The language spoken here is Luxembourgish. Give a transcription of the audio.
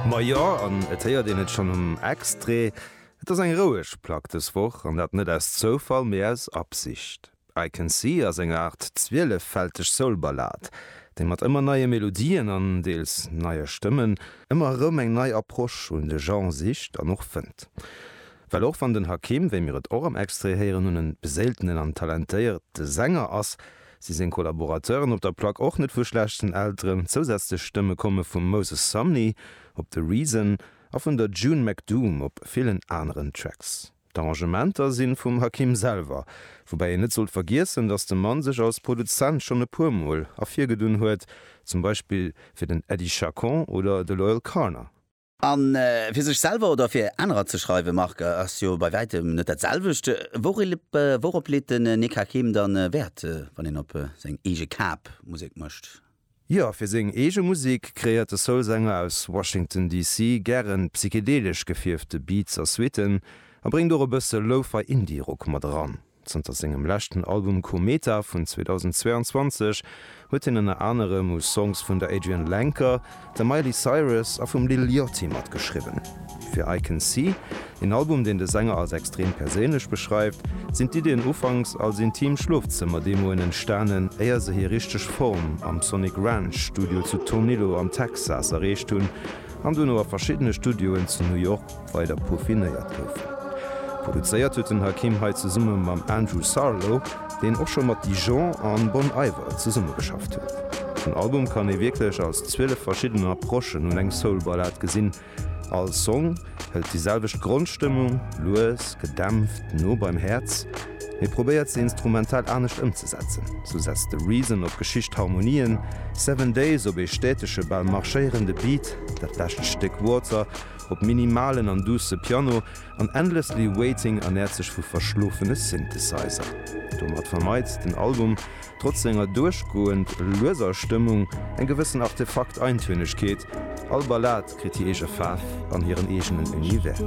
Majo, an et héiert een et schonn um Extrait, et ass eng roueg Plack dës Woch, an dat net aus Zoufall, mee aus Absicht. I Can See ass eng Aart zwieleffälteg Soul-Ballad, déi mat ëmmer neie Melodien an deels neie Stëmmen ëmmer erëm eng nei Approche un de Genre sicht an och fënnt. Well och wann den Hakim, wéi mir et och am Extrait héieren, un e beséiltenen an talentéierte Sänger ass, Si seng Collaborateuren op der Plack och net vu schlechten Elteren. Zousätzlech Stëmme komme vum Moses Sumney op The Reason a vun der June McDoom op villen aneren Tracks. D'Arrangementer si vum Hakim selwer, woubäi een net sollt vergiessen, datt de Mann sech als Produzent schonn e puer Mol ervirgedunn huet, zum Beispill fir den Eddie Chacon oder de Loyle Carner. A fir sech selwer oder fir anerer ze schreiwe marke ass jo bei wäitem net dat selwecht. Wourop leet den Nick Hakim dann Wäert, wann een op seng eege Kap Musek mécht? Jo, fir seng eege Musek kreéiert de Soul-Sänger aus Washington DC. gären psychedelesch gefierfte Beats a Suitten a bréngt och e bësse Lo-Fi Indie-Rock mat eran. Zanter sengem leschten Album Kometa vun 2022 huet hien ënner anerem u Songs vun der Adrianne Lenker, der Miley Cyrus a vum Lil Yachty matgeschriwwen. Fir I Can See, een Album, deen de Sänger als extrem perséinlech beschreift, sinn d'Iddien ufanks als intim Schlofzëmmer-Demoen entstanen, éier se hir richteg Form am Sonic Ranch Studio zu Tornillo am Texas erreecht hunn an dono a verschiddene Studioen zu New York, weider peaufinéiert goufen. Produzéiert huet den Hakim hei zesumme mam Andrew Sarlo, deen och scho mat Dijon an Bon Iver zesummegeschafft huet. Den Album kann ee wierklech als 12 verschidden Approchen un eng Soul-Ballad gesinn. All Song hëlt déi selwecht Grondstëmmung, lues, gedämpft, no beim Häerz, mee probéiert se instrumental anescht ëmzesetzen. Sou setzt The Reason op geschicht Harmonien, Seven Days op ee stätege, bal marschéierende Beat, dat lescht Stéck Water op minimalen an duusse Piano an Endlessly Waiting ernäert sech vu verschlofene Synthesizer. Domat vermeit den Album, trotz senger duerchgoend lueser Stëmmung, eng gewëssen Artefakt-Eintönegkeet, all Ballad kritt hir eege Faarf an hiren eegenen Univers.